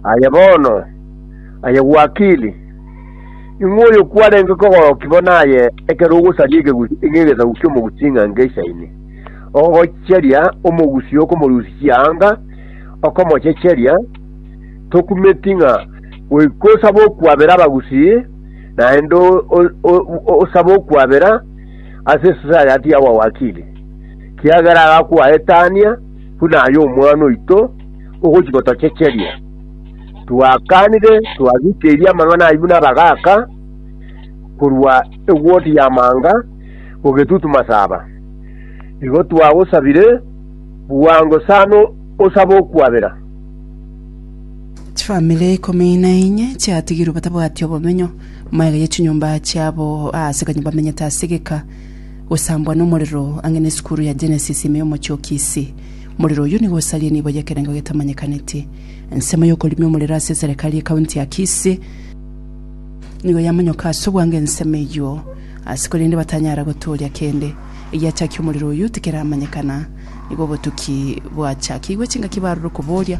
Aye bono, aye Wakili, ing'we oyo kwarenge kogorokia bo naye ekero ogosaria ekegusi ng'egesaku ki'omogusi ching'ango echisaini, ogocheria omogusi okomorusia chianga, okomochecheria, tokumeti ng'a goika osabe okwabera abagusi, naende osabe okwabera ase esosayati y'abawakili, kiagera agakwaetania buna aye omwana oito, ogochika otochecherie. Twakanire, twagikeirie amang'ana ayio buna abagaaka korwa egwoti y'amaanga gogetutu masaba. Igo twagosabire bwango sana osabe okwabera. Chifamiri ikomi na inye chiatigirwe batabwati obomenyo, maega ye chinyomba chiabo aase kanyo bamenyete ase egeka, gosambwa nomorero ang'e ne esukuru ya Genesis ime y'omochie o Kisii. Morero oyio nigo osaria nibo y'ekerengo getamanyekaneti. Ensemo y'okorimia omorero ase eserekari ye county ya Kisii nigo yamonyoka ase obwango ensemo eyio ase korende batanyara gotooria kende egiachakia omorero oyio tikeramanyekana. Nigo obotuki bwachakigwe chingaki barure koboria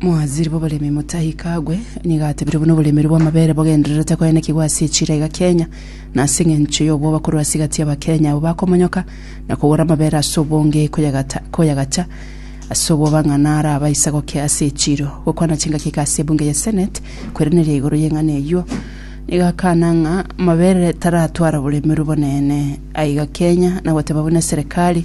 Mwazire boboremi motahika agwe, nigo atebire buna oboremeri bw'amabere bogendererete koenekigwa ase echira iga Kenya, na ase engencho y'obwoba korwa ase gati y'Abakenya abwo bakomonyoka na kogora amabere ase obonge koyagata koyagacha ase obwoba ng'a naro abaisa gokea ase echiro. Gokwana chingaki iga ase ebunge ya Senate kweraneria igoro y'eng'ana eyio, nigo akana ng'a amabere taratwara oboremeri obonene aiga Kenya, na goteba buna eserekari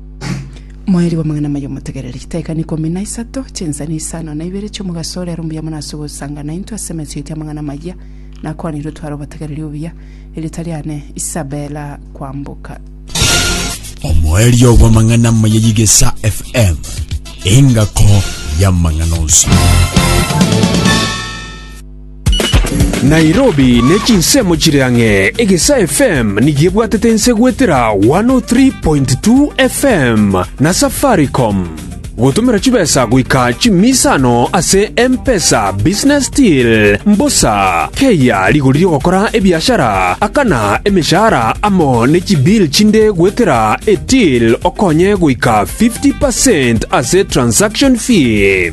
Moeri bw'amang'ana amaya omotegereri. Chitaika na ikomi na isato, chinsemo isano na ibere chi'omogaso ore aro mbuya mono ase ogosanga naintwe ase emechie eria amang'ana amaya. Nakwanirwe tware obotegereri obuya. Erieta riane Isabella Kwamboka. Omoerio bw'amang'ana amaya y'Igesa FM, engako y'amang'ana onsi. Nairobi ne chinsemo chire ang'e, Egesaa FM nigo ebwatete ense goetera 103.2 FM na Safaricom. Gotomera chibesa goika chimisa ano ase M-Pesa Business Till, mbosa, keiya rigori ri'ogokora ebiashara, akana emeshahara amo ne chibill chinde goetera e-till okonye goika 50% ase transaction fee.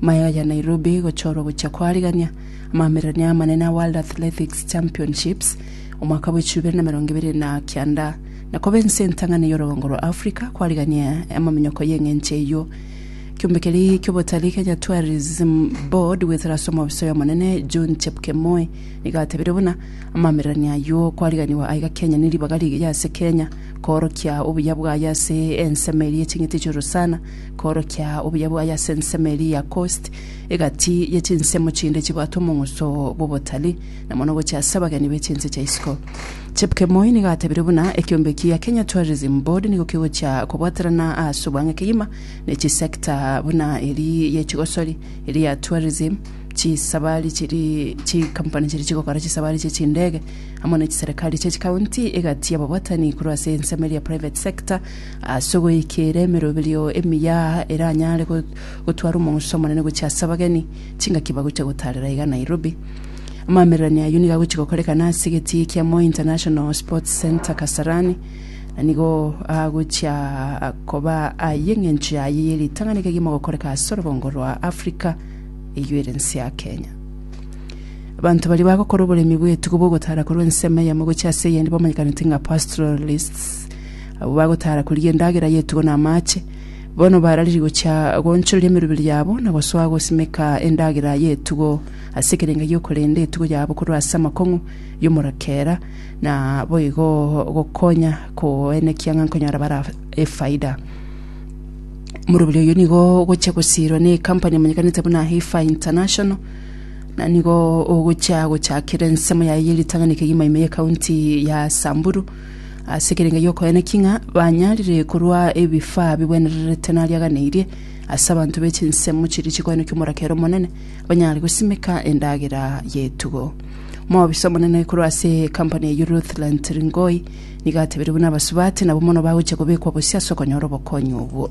Mayo ya Nairobi gochorwa gochia koarigania amamererania amanene a World Athletics Championships omwaka bwa echiru bibere na emerongo ebere na kianda na koba ense entang'ani y'orogongo rwa Africa koarigania amaminyoko y'eng'encho eyio. Kiombe keria ki'obotalii Kenya Tourism Board goetera ase omobisa oyo omonene John Chepkemoi nigo atebirie buna amamererania ayio koariganiwa aiga Kenya ne ribaga rigeye ase Kenya koorokia obuya bwaye ase ensemo eria y'eching'iti chi'orosana Koorokia obuya bwaye ase ensemo eria ya Kosti, egati ye chinsemo chinde chibwate omong'uso bw'obotari, na mono gochia ase abageni be chinse chia isiko. Chepkemoi nigo atebire buna ekeombe eki gia Kenya Tourism Board nigo kegochia kobwaterana ase obwange kegima ne chisector buna eri ye chigosori, eri ya tourism, chisabari chiri chikampuni chiri chigokora chisabari chie chindege, amo ne chiserekari chie chikaunti, egati y'ababwatani korwa ase ensemo eria private sector, Ase ogoikeera emeroberio emiya eranyare gotwara omonto omonene gochia ase abageni, chingaki bagochia gotaarera iga Nairobi. Amamererania ayio nigo agochia gokorekana ase egetii kia Moi International Sports Centre Kasarani, na nigo agochia koba aye eng'encho yaye ye ritang'ani kegima gokoreka ase orogongo rwa Africa eyio ere ense ya Kenya. Abanto baria bagokora oboremi bw'etugo bw'ogotaara korwa ensemo eyemo gochia ase eyende bamanyekanete ng'a pastoralists. Abwo bagotaara korigia endagera y'etugo na amaache, bono barariri gochia goonchoreria emeroberi yabo na gosoa gosimeka endagera y'etugo ase ekerenga gi'okorenda etugo yabo korwa ase amakong'u y'omorakera, na boigo gokonya koenekia ng'a nkonyora bare efaida. Omoroberi oyio nigo ogochia gosiirwa na ekampani emanyekanete buna Heifa International, na nigo ogochia gochakera ensemo yaye ye ritang'ani kegima ime y'ekaunti ya Samburu. ase ekerengo gi'okoegena ki ng'a banyarire korwa ebifaa bigwenererete nariaganeirie, ase abanto be chinsemo chiria chikoegena ki'omoraka ere omonene, banyare gosimeka endagera y'etugo. Omobisa omonene korwa ase ekampani eyio Ruthland Ringoi nigo atebirie buna abasubati nabo mono bagochia kobekwa bosio ase okonyora obokonyi obwo.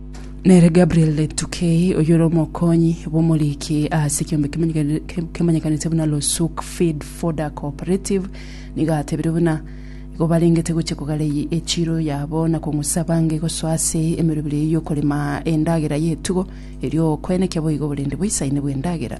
Nere Gabriel Tukei, oyore omokonyi bw'omoriki ase ekeombe kimanyekani- ke- kemanyekanete buna Losuk Feed Fodder Cooperative, nigo atebire buna igo barengete gochia kogara eye echiro yabo na kong'usa abange gosoa ase emerobera eyio y'okorema endagera y'etugo, erio okoenekia boigo oborende boisaine bw'endagera.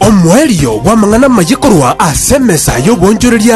Omoerio bw'amang'ana amaye korwa ase emesa y'oboonchoreria